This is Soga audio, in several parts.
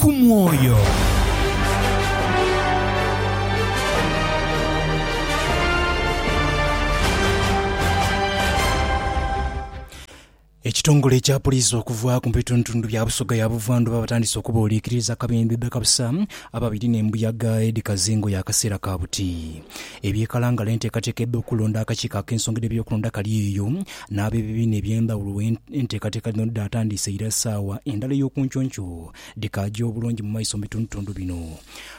ku mwoyo. Ekitongole kya poliisi okuva ku bitundutundu bya Busoga ya Buvandhuba batandise okubooliikiriza akabembe bakabusa ababiri n'embuyaga Eddy Kazingo ya kaseera ka buti. Eby'e Kalangala enteekateeka edh'okulonda akakiiko ak'ensonga dh'ebyokulonda kali eyo N'ab'ebibiina eby'endhawulo we enteekateeka dhino dhidaatandiise ira saawa endala ey'okunkyonky o dhikaaja obulungi mu maiso mu bitundutundu bino.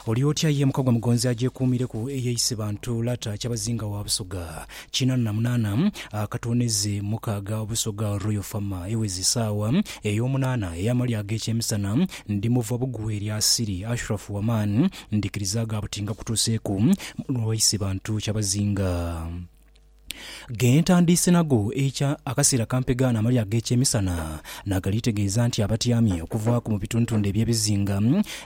Oli otya ye mukagwa mugonzi agyekuumireku eye Isibantu Lata Kyabazinga wa Busoga kinana na munaana akatooneze mukaaga Busoga Royal Farmer eweze saawa ey'omunaana ey'amalya ag'ekyemisana ndi muva bugwe lya Siri Ashrafu Waman ndikiriza ga buti ngakutuuseeku mulwa wa Isibantu Kyabazinga. Ghe ntandiise nagho eikya, akaseera kampegha n'amalya ag'ekyemisana, nagali tegeeza nti abatyamye okuvaaku mu bitundtundhu eby'ebizinga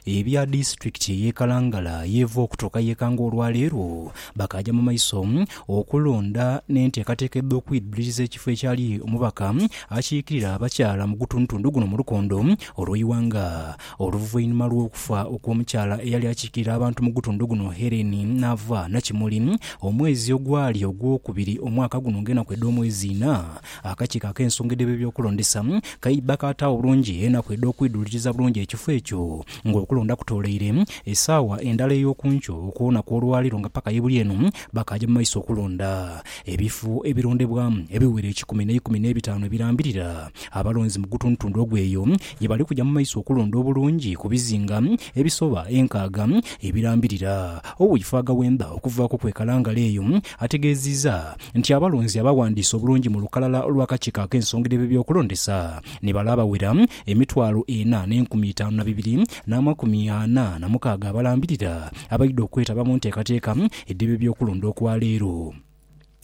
ebya disitulikiti ey'e Kalangala y'eva okutuuka y'e Kanga olwaleero bakaaja mu maiso okulonda n'enteekateeka edh'okwidhuliriza ekifo ekyali omubaka akiikirira abakyala mu gutundtundhu guno mu lukondo olw'eighanga. Oluvainhuma lw'okufa okw'omukyala eyali akiikirira abantu mu gutundhu guno Helen n'ava Nakimuli omwezi ogwali ogwokubiri omwaka guno ng'enaku edh'omwezi ina, akakiiko ak'ensonga edh'ebyokulondesa kaidha kaataawo bulungi enaku edh'okwidhuuliriza bulungi ekifo ekyo ng'okulonda kutooleire esaawa endala ey'oku nkyo okwona kw'olwaleero nga paka ye buli eno bakaaja mu maiso okulonda ebifo ebirondebwamu ebiwera ekikumi n'eikumi n'ebitaanu ebirambirira abalonzi mu gutundhutundhu ogw'eyo Ye bali kuja mu maiso okulonda obulungi ku bizinga ebisoba enkaaga ebirambirira owiifo agawemba okuvaaku kwekalangala eyo. Ategeeziiza nti abalonzi abawandiise obulungi mu lukalala olw'akakiiko ak'ensongra eb'ebyokulondesa ni bale abawera emitwalo ena n'enkumi itaanu na bibiri n'amakumi ana na mukaaga abalambirira abaidha okwetaba mu nteekateeka edh'eb'ebyokulonda okwa leero.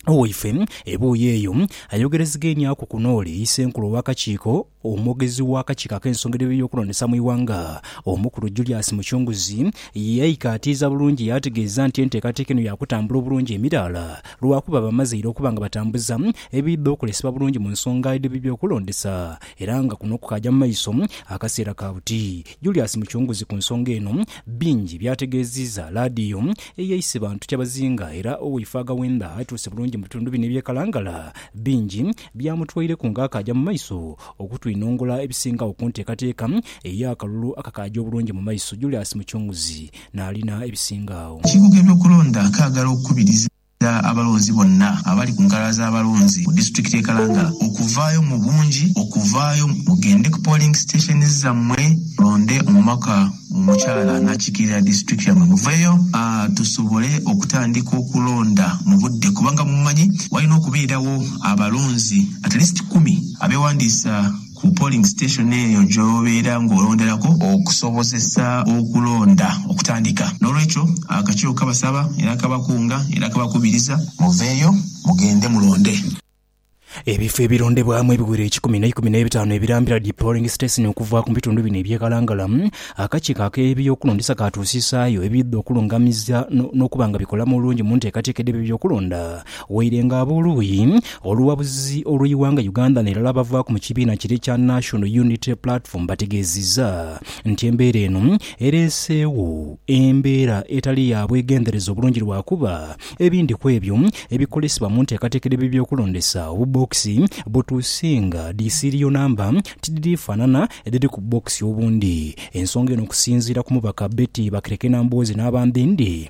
Owaife ebuuyi eyo ayogerezeghenyaku ku n'ole Isenkulu ow'akakiiko omwogezi w'akakiiko ak'ensonga edh'ebyokulondesa mu ighanga, Omukulu Julius Muchunguzi yaikaatiiza bulungi yaategeeza nti enteekateeka eno yaakutambula obulungi emiraala lwakuba bamaze ira okuba nga batambuza ebiidha okolesebwa bulungi mu nsonga edh'ebyokulondesa era nga kuno kukaagya mu maiso akaseera ka buti. Julius Mucunguzi ku nsonga eno bingi by'ategeeziiza laadiyo eye Isebantu Kyabazinga era owaife agaghenda atuuse bulungi mu bitundu bino eby'e Kalangala bingi byamutwaireku ng'akaaja mu maiso okutwinongola ebisingagho ku nteekateeka ey'akalulu akakaaja obulungi mu maiso Julius Mucunguzi n'alina ebisingagho. Ekibuga eby'okulonda kaagala okukubiriza. Nsaba abalonzi bonna abali ku nkalala z'abalonzi ku disitulikiti y'e Kalangala okuvaayo mu bungi, okuvaayo mugende ku polling stations zammwe mulonde omubaka omukyala anaakiikirira disitulikiti yammwe. Muveeyo tusobole okutandika okulonda mu budde kubanga mumanyi walina okubeerawo abalonzi at least kumi abeewandiisa. ku polling station eyo gy'obeera ng'olonderaku okusobozesa okulonda okutandika. N'olwekyo akakiiko kabasaba era kabakunga era kabakubiriza muveeyo mugende mulonde. Ebifo ebilondebwamu ebiwera ekikumi n'eikumi n'ebitaanu ebirambira dhi polling station okuva mu bitundu bino eby'e Kalangala, akakiiko ak'ebyokulondesa kaatuusisaayo ebidha okulungamiza n'okuba nga bikola mu bulungi mu nteekateeka edh'ebyokulonda Waire nga ab'oluuyi olughabuzi olw'eighanga Uganda n'erala abavaaku mu kibiina kire ekya National Unity Platform bategeezizza nti embeera eno ereeseegho embeera etali ya bwegendereza obulungi lwakuba ebindi kwebyo ebikolesebwa mu nteekateeka edh'ebyokulondesa obubookisi butuusinga dhi siiriyo namba tidhiri faanana edhiri ku bubookisi obundi. Ensonga eno okusinziira ku mubaka Betty Bakireke Nambooze n'abandhindi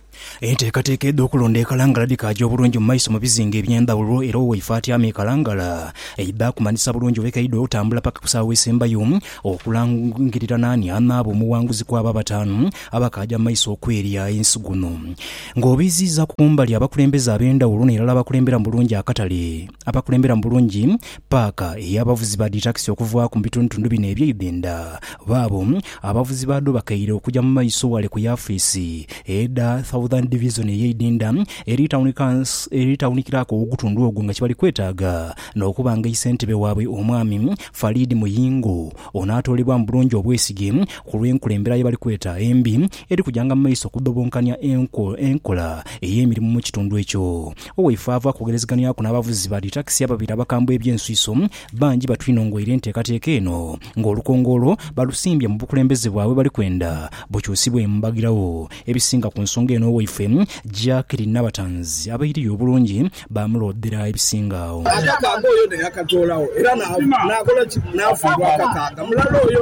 Enteekateeka edh'okulonda e Kalangala dhikaagya obulungi mu maiso mu bizinga eby'endhawulo era owaife atyama e Kalangala aidha akumanyisa bulungi we kaidha otambula paka ku sawa esembayo okulangirira naani anaaba omughanguzi kw'abo abataanu abakaagya mu maiso okwerya ensi. Guno ng'obiiziiza ku mbali abakulembeze ab'endhawulo n'erala abakulemberamu bulungi akatale. abakulembera mu bulungi paaka ey'abavuzi ba dhitakisi okuvaaku mu bitundutundu bino eby'e Uganda baabo abavuzi baadho bakaire okuja mu maiso ghale ku yafiisi edha Southern Division ey'e Idinda eri tawunikilaku ow'ogutundu ogwo nga kyebali kwetaaga n'okuba nga isentebe waabwe Omwami Farid Muyingo onaatoolebwa mu bulungi obwesige ku lw'enkulembera ye bali kweta embi eri kujanga mu maiso okudhobonkania enkola ey'emirimu mu kitundu ekyo. Owaifo ava kwogerezeganyaku n'abavuzi ba dhitakisi ababiri abakambwe eby'ensuiso. Bangi batwinhongoire enteekateeka eno nga olukongoolo balusimbye mu bukulembeze bwabwe bali kwenda bukyusibwe embagirawo. Ebisinga ku nsonga eno owaifwe Jacqueline Nabatanzi abairiyo obulungi baamuloodhera ebisinga agho. Agamba nga oyo neyakatoolawo era n'akola ki? N'afiirwa akakaaga mulala oyo.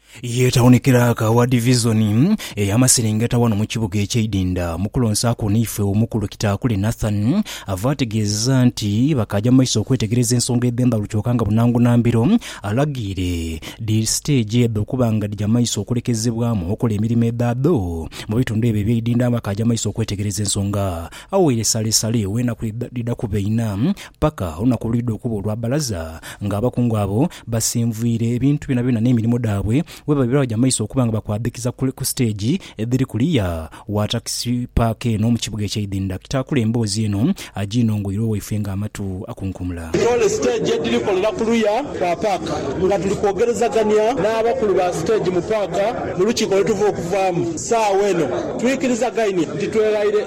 Ye tawuni kiraaka wa divizoni ey'amaserengeta wano mu kibuga eky'eidinda. Mu kulonsa kwo naifwe, Omukulu Kitaakule Nathan ava ategeeza nti bakaaja mu maiso okwetegereza ensonga edh'endhalu kyoka nga bunangu na mbiro alagiire dhi siteegi edho okuba nga dhija mu maiso okulekezebwamu okola emirimo edhadho mu bitundu ebyo eby'eidinda. Bakaaja mu maiso okwetegereza ensonga agho ghaire salesale w'enaku dhidha kuba inha. Paka olunaku olwidha okuba olwa bbalaza, nga abakungu abo basinvwire ebintu byonabyona n'emirimo dhaabwe, webaba bye baja mu maiso okuba nga bakwadhikiza kule ku siteegi edhiri kuliya wa takisi paaka eno mu kibuga eky'eidhindha. Kitaakula emboozi eno agiinongoire owaifwe nga amatu akunkumula. Toole siteegi edhiri kolera kuluya kwa paaka nga tuli kwogerezagania n'abakulu ba siteegi mu paaka mu lukiiko lwe tuva okuvaamu. Saagho eno twikirizagainie nti tweghaire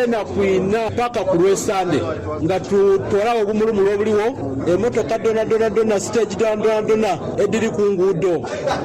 enaku inha paka ku lw'esande. Nga tutoolagho obumulumulu obuligho, emotoka dhonadhona dhona, siteegi dhonadhona edhiri ku nguudo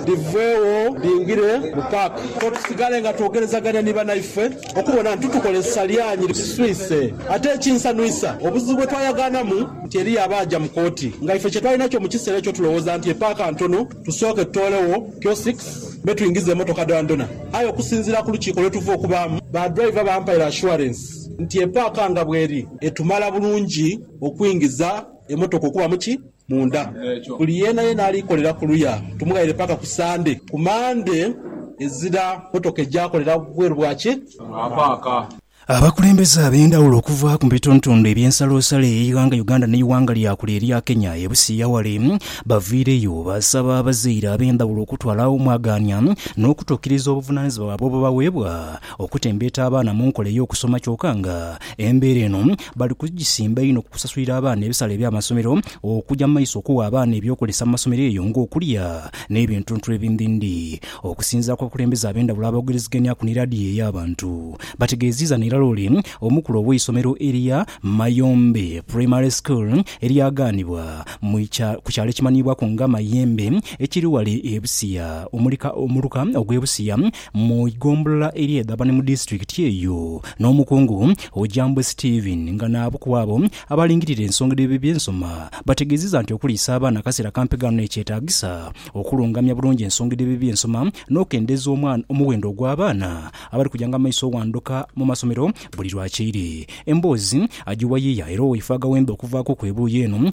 dhiveegho dhingire mu paaka. Kwo tusigale nga twogerezagania ni banaife okubona nti tukozesa lyanhi liswise. Ate ekinsanhuisa, obuzibu bwe twayagaanamu nti eriyo abaaja mu kooti nga ife kye twali nakyo mu kiseera ekyo tulowooza nti epaaka ntono tusooke tutoolegho kiosks me twingize emotoka dhonadhona. Aye okusinziira ku lukiiko lwe tuva okubaamu, badriver bampaire assurance. nti epaaka nga bweri etumala bulungi okwingiza emotoka okuba muki munda, buli yeenayeena alikolera kuluya tumughaire paaka ku Sande, ku Mande ezira motoka eja kolera bweru bwa ki? Bwa paaka. Abakulembeze abendhawulo okuva mu bitundutundu ebyensalosalo eyeighanga Uganda neighanga lyakule erya Kenya e Busia wale bavaireyo basaba abazaire abendhawulo okutwala agho omwagaania nokutukiriza obuvunanizibwa bwabwe obubaweebwa okutembeeta abaana mu nkola ey'okusoma kyoka nga embeera eno bali kugisimba inho ku kusasulira abaana ebisale by'amasomero okugya mu maiso okuwa abaana eby'okozesa mu masomero eyo ng'okulya n'ebintuntu ebindhindhi. Okusinziira ku bakulembeze ab'endhawulo aboogereziganyaku ni laadiyo ey'abantu, bategeeziiza n'irala ole omukulu ow'eisomero erya Mayombe Primary School eryagaanibwa mu ku kyalo ekimanhiibwaku nga Mayembe ekiri ghale e Busia omuluka ogw'e Busia Mu igombolola eri e Dhabane mu disitulikiti eyo, n'omukungu Ojambwe Stephen nga naabu ku abo abalingirira ensonga dh'eby'ensoma bategeezezza nti okuliisa abaana akaseera akampi ghano ekyetaagisa okulungamya bulungi ensonga dh'eby'ensoma n'okukendeeza omuwendo ogw'abaana abali kujanga maiso oghanduka mu masomero buli lwa kyeire. Emboozi agiwa yiya era owaife agawembe okuvaaku ku ebuuyi eno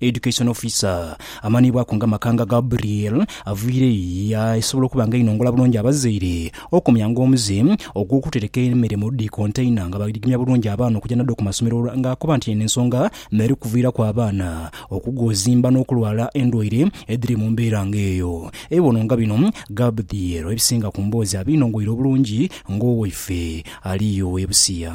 Education Officer, amanhiibwaku nga Makanga Gabriel, aviire ya esobola okuba nga einongola bulungi abazaire, okumya nga omuze, ogw'okutereka emere mu dhi kontaina nga baigimya bulungi abaana okuja nadho ku masomero nga akoba nti eno ensonga n'eri kuviiraku abaana okugoozimba n'okulwala endwaire edhiri mu mbeera nga eyo. Ebibono nga bino Gabdiel ebisinga ku mboozi abinongoire obulungi ng'owaife ali yo e Busia.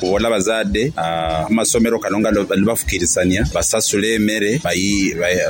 Kubona bazadhe amasomero kano nga nibafukirisania basasule emere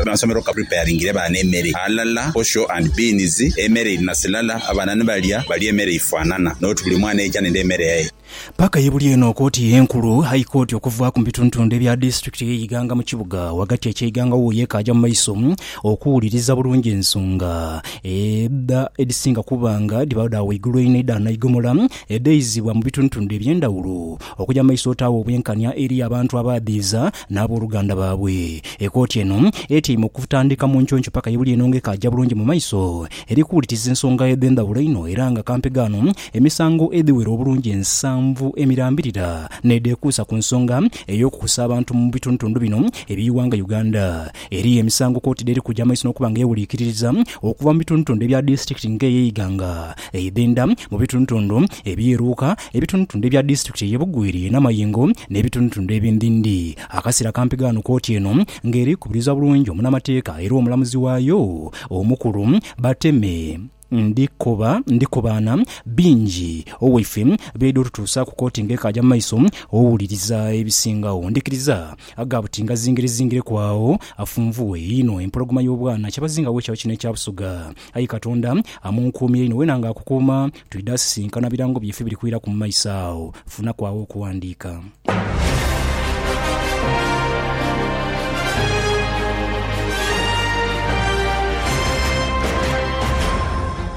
amasomero ka preparingire baana emere ghalala posho and beans emere iri na silala abaana nibalya balye emere eifanana not buli mwana eija nende emere yaye. Paaka ye buli eno kooti enkulu, High Court, okuvaaku mu bitundutundu ebya disitulikiti eye Iganga mu kibuga ghagati ekye Iganga wuuyo ekaaja mu maiso okuwuliriza bulungi ensonga edha edhisinga kuba nga dhibagho dha waigulu einho edha naigomola. Edheizibwa mu bitundutundu eby'endhawulo okuja mu maiso otaagho obwenkanya eri abantu abaadhiiza n'aboluganda baabwe. Ekooti eno etyaime okutandika mu nkyonky paka ye buli eno nga ekaaja bulungi mu maiso eri kuwuliriza ensonga edh'endhawulo einho era nga kampe ghano emisango edhiwera obulungi ensanvu emirambirira n'edhekuusa ku nsonga ey'okukusa abantu mu bitundutundu bino eby'eighanga Uganda. Eriyo emisango kooti dh'eri kuja mu maiso n'okuba nga ewuliikiririza okuva mu bitundutundu ebya disitulikiti nga ey'e Iganga, Eidhindha mu bitundutundu ebyeruuka, ebitundutundu ebya disitulikiti eye Bugweri namayingo nebitundutundu ebindhindhi. Akasera kampi ghano kooti eno nga eri kubiriza bulungi omunamateeka era omulamuzi waayo omukulu Bateme Ndikobaana bingi owaife byaidha otutuusaaku kooti nga ekaaja mu maiso owuliriza ebisingagho. Ndhikiriza gha buti nga zingire zingireku agho afunvughe einho empologoma yobwana kyebazingagho ekyalo kino ekya Busoga. Ayi Katonda, amunkuumye inho wena nga akukuuma, twidha sisinkana birango byaife biri kwiraku mu maiso agho. Funaku agho okuwandiika.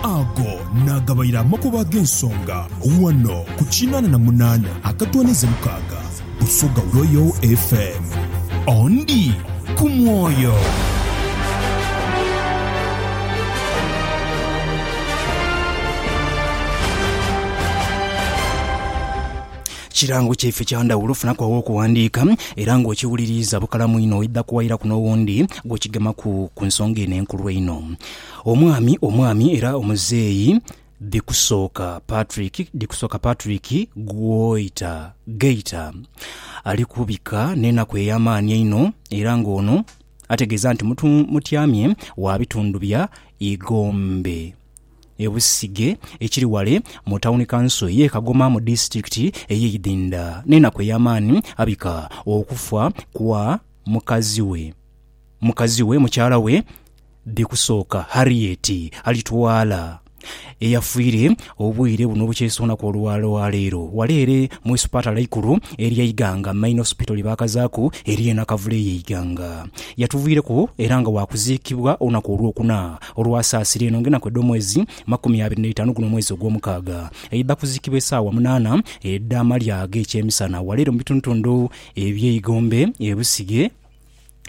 Ago naagabaire amakubo ag'ensonga ghano ku kinaana na munaana akatwaniza mukaaga. Busoga Royal FM. Ondi ku mwoyo. Kirango kyaife kya ndhawulo ofunaku aw'okuwandiika era ng'okiwuliriiza bukalamu inho oidha kuwairaku n'owundi gw'okigemaku ku nsonga eno enkulu einho. Omwami, omwami era omuzeeyi. Dhikusooka Patrick Dhikusooka Patrick Gwoita Geita ali kubika n'enaku ey'amaani einho era nga ono ategeeza nti mutu mutyamye wa bitundu bya Igombe e Busige ekiri wale mu tawuni kanso ye Kagoma mu disitulikiti eye Idhindha n'enaku ey'amaani abika okufa kwa mukazi we. mukazi we, mukyala we bi kusooka Harriet Alitwala eyafiire obwire buno obukyesoonaku olwaleero wala ere mu isupatala eikulu erye Iganga Main Hospital lye baakazaaku erye Nakavule eye Iganga. Yatuviireku era nga waakuziikibwa olunaku olwokuna olwa Saasira eno nga enaku edh'omwezi makumi abiri n'eitaanu guno omwezi ogw'omukaaga. Aidha kuziikibwa esaawa munaana edh'amalya ag'ekyemisana wala ere mu bitundutundu ebye Igombe e Busige.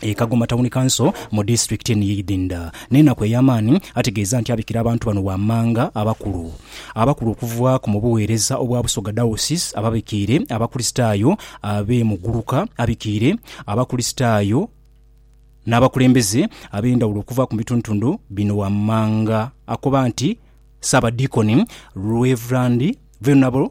e Kagoma Tawuni Kanso mu disitulikiti ni Idinda n'enaku ey'amaani ategeeza nti abikira abantu bano wammanga abakulu abakulu okuva ku mu buweereza obwa Busoga Diocese ababikiire Abakulisitaayo ab'e Muguluka abikiire Abakulisitaayo n'abakulembeze ab'endhawulo okuva ku bitundutundu bino wammanga akoba nti Ssaabadiikoni Rev. Venerable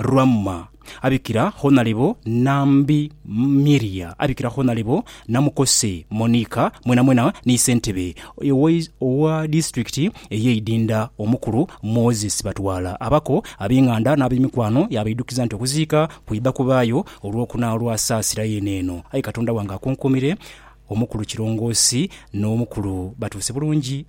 Ramma, abikira Honalebo Nambi Miria, abikira Honalebo Namukose Monica mwenamwena ni Ssentebe owa Disitulikiti eye Idinda Omukulu Moses Batwala abako abenganda n'abemikwano yabaidukiza nti okuziika kwidha kubaayo olwokuna olwa Saasira yeene eno aye Katonda wange akunkuumire Omukulu Kirongoosi n'Omukulu batuuse bulungi.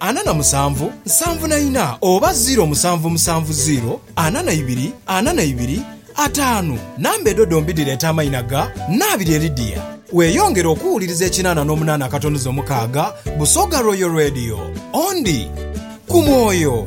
ana na musanvu, nsanvu na ina, oba ziiro musanvu musanvu ziiro, ana na ibiri, ana na ibiri, ataanu. Namba edho dhombi dhireeta amaina ga Nabirye Lydia. Weeyongere okuwuliriza ekinaana n'omunaana akatonuzo mukaaga, Busoga Royal Radio. Ondi. Ku mwoyo.